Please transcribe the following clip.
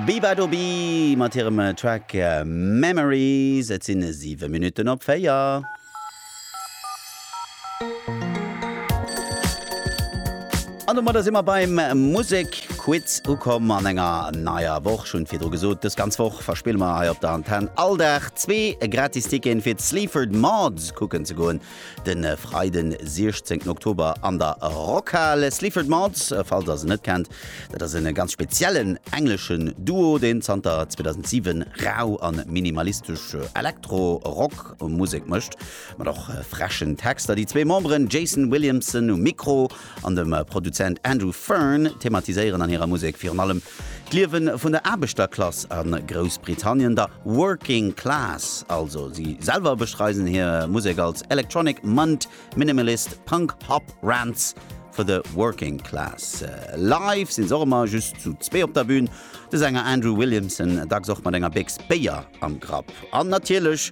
Beabadobi mat hirem Track Memories. Et sinn 7 Minutten op 4. An domadder si mer beim Musekquiz ukomm an enger neier Woch. Ech hunn et virdru gesot, dës ganz Woch verspille mer hei op der Antenn all Dag zwee gratis Ticketen fir d'Sleaford Mods kucken ze goen. Den Freiden 16 Oktober an der Rockhal. Sleaford Mods, falls der se net kennt, dat ass en ganz speziellen engleschen Duo deen zanter 2007 rau an minimalistesch Elektro Rock Musek mëscht mat och freschen Texter. Déi zwee Memberen Jason Williamson um Mikro an dem Produzent Andrew Fearn thematiséieren an hirer Musek virun allem d'Liewe vun der Aarbechterklass a Groussbritannien, der Working Class also. Si selwer beschreisen hir Musek als Electronic Munt Minimalist Punk Pop Rants for the Working Class. Live sinn se och ëmmer just zu zwee op der Bün, de Sänger Andrew Williamson dacks och mat enger Béchs Béier am Grapp an natierlech